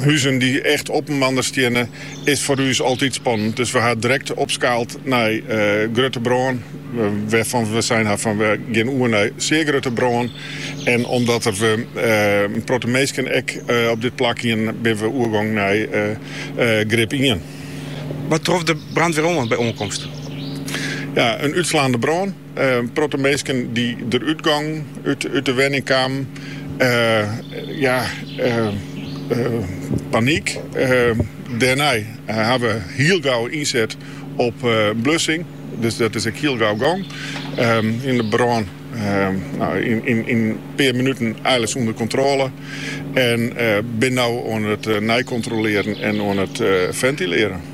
Huzen dy't echt op inoar steane, is foar ús altyd spannend. Dus we ha direkt opskaald nei grutte brân, wêrfan't we sein ha fan we gean oer nei sear grutte brân. En omdat der in protte minsken ek op dit plak wienen, binne we oergong nei grip ien. Wat trof de brânwar oan by oankomst? Ja, in útslaande brân. In protte minsken dy't der útgongen út de wenning kamen yn panyk. Dêrnei ha we hiel gau ynset op blussing, dus dat is ek hiel gau gong. En de brân yn in pear minuten eins ûnder kontrôle en binne no oan it neikontrolearjen en oan it fentilearjen.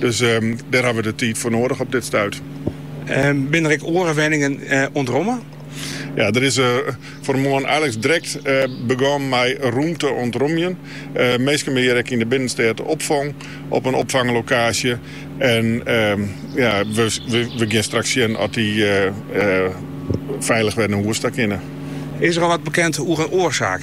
Dus dêr hawwe we de tiid foar noadich op dit stuit. Binne der ek oare wenningen ûntromme? Ja, der is fan 'e moarn eins drekt begûn mei rom te ûntromjen. Minsken binne hjir ek yn de binnenstêd opfong op in opfanglokaasje. En ja, we gean straks sjen oft dy feilich wer nei hûs ta kinne. Is der al wat bekend oer in oarsaak?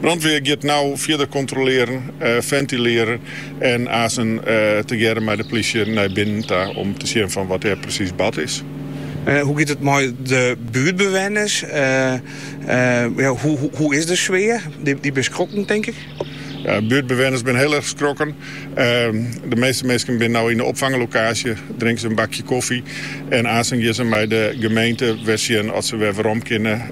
Brânwar giet no fierder kontrolearjen, fentilearjen en aansen tegearre mei de plysje nei binnen ta om te sjen fan wat dêr presys bard is. Hoe giet it mei de buertbewenners? Hoe is de sfear? Dy binne skrokken tink ik? Buertbewenners binne hiel erg skrokken. De measte minsken binne no yn de opfanglokaasje, drinke se in bakje kofje en aansen gean se mei de gemeente wer sjen oft se wer werom kinne.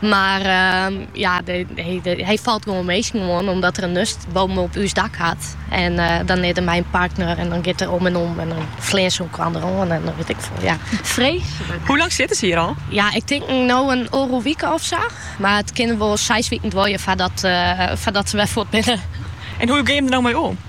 Mar ja, hy falt gewoan minsken oan omdat er in nust boppe op ús dak hat. En dan is er mei in partner en dan giet er om en om en dan fleane se elkoar der oan en weet ik veel. Ja, freeslik. Hoe lang sitte se hjir al? Ja, ik tink no in oardel wike of sa. Mar it kin wol seis wiken duorje foardat se wer fuort binne. En hoe gean je der no mei om?